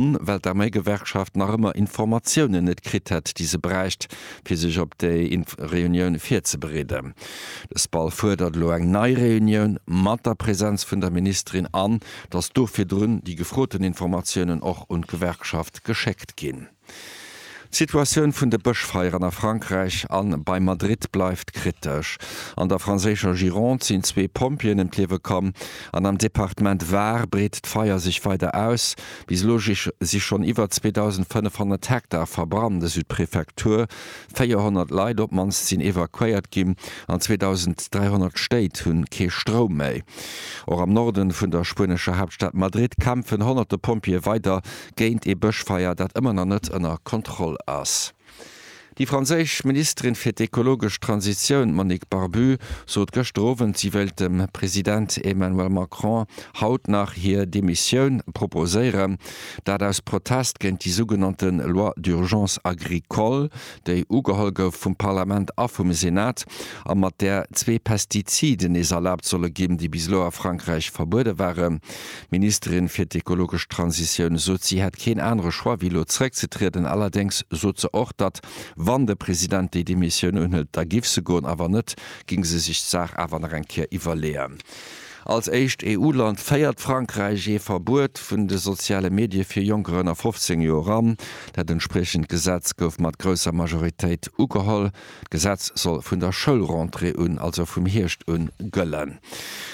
Grond, well d'Arméigewerkschaft nach ëmmer Informatiounen net kritt hätt, déi se bräicht, fir sech op déi Reunioun virzebereeden. De SPAL fuerdert elo eng nei Reunioun mat der Präsenz vun der Ministerin an datt do virdrun déi gefroten Informatiounen och un d'Gewerkschaft geschéckt ginn. D'Situatioun vun de Bëschfeieren a Frankräich a bei Madrid bleift kritesch. An der franséischer Gironde sinn zwee Pompjeeën ëm d'Liewe komm an am Departement Var breet d'Feier sech weider aus. Bis elo si schonn iwwer 2.500 Hektar verbrannt, esou d'Prefektur. 400 Leit op d'mannst sinn evakuéiert ginn an 2.300 Stéit hu kee Stroum méi. Och am Norde vun der spuenescher Haaptstad Madrid kämpfen honnerte Pompjeeë weider géint ee Bëschfeier, dat ëmmer nach net ënner Kontroll ass. Déi franséisch Ministerin fir d'ekologesch Transitioun Monique Barbu sot gëschter Owend, si wéilt dem President Emmanuel Macron haut nach hir Demissioun proposéieren. Dat aus Protest géint déi sougenannte Loi d'urgence agricole, déi ugeholl gouf vum Parlament a vum Senat a mat där zwee Pestiziden nees erlaabt solle ginn, déi bis elo a Frankräich verbuede waren. D'Ministerin fir d'ekologesch Transitioun sot, si hätt keen anere Choix wéi elo zeréckzetrieden. Allerdéngs sot se och, datt, wann de President déi Demissioun unhëlt, da giff se goen, a wann net, géing se sech d'Saach awer nach eng Kéier iwwerleeën. Als éischt EU-Land féiert Frankräich ee Verbuet vun de soziale Medie fir Jonker ënner 15 Joer an. Dat entspriechend Gesetz gouf mat grousser Majoritéit ugeholl. D'Gesetz soll vun der Schoulrentrée un, also vum Hierscht un, gëllen.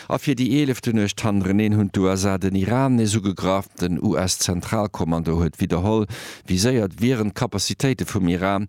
A fir déi eelefte Nuecht hannereneen hunn d'USA den Iran nees ugegraff. Den US-Zentralkommando huet widderholl viséiert, wieren d'Capacitéite vum Iran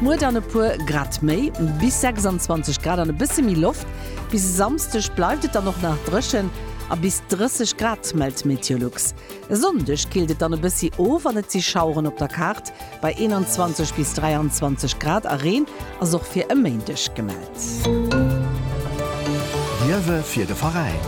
Muer dann e puer Grad méi, bis 26 Grad an e bësse méi Loft. Bis e Samsdeg bleift et dann och nach dréchen a bis 30 Grad, mellt d'Meteolux. E Sonndeg killt et dann e bëssi of an et si Schaueren op der Kaart bei 21 bis 23 Grad a Reen ass och fir e Méindeg gemellt. D'Liewe fir de Veräin.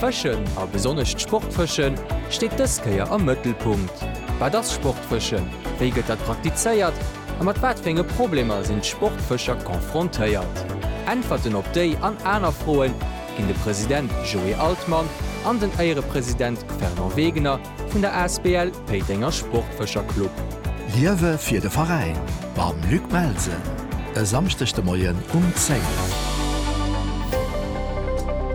Fëschen, a besonnesch d'Sportfëschen, steet dës Kéier am Mëttelpunkt. Wat ass Sportfëschen, wéi gëtt dat praktizéiert a mat wat fir enge Problemer sinn d'Sportfëscher confrontéiert? Äntwerten op déi an aner Froe ginn de President Joé Altmann an den Éierepresident Fernand Wegener Vun der Asbl Péitenger Sportfëscher Club. Liewe fir de Veräin mam Luc Melsen e Samschdeg de Moien um 10.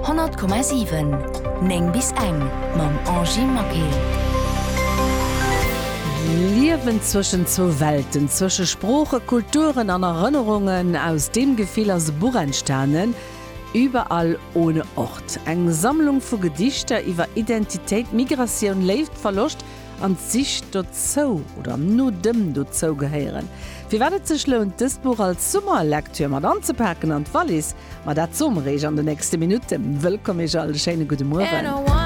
100,7 9 bis eng mam Angy Maquet. D'Liewen zwëschen zwou Welten, zwësche Sproochen, Kulturen an Erënnerungen, aus deem Gefill ass e Buch entstanen, Überall ohne Ort, eng Sammlung vu Gedichter iwwer Identitéit, Migratioun, Léift, Verloscht an d'Sich dozou oder no dem Dozougehéieren. Firwat et sech lount, dëst Buch als Summerlektür mat anzepaken an d'Wallis, ma dat soe mer Iech an de nächste Minutten. Wëllkomm Iech all, e schéine gudde Mueren.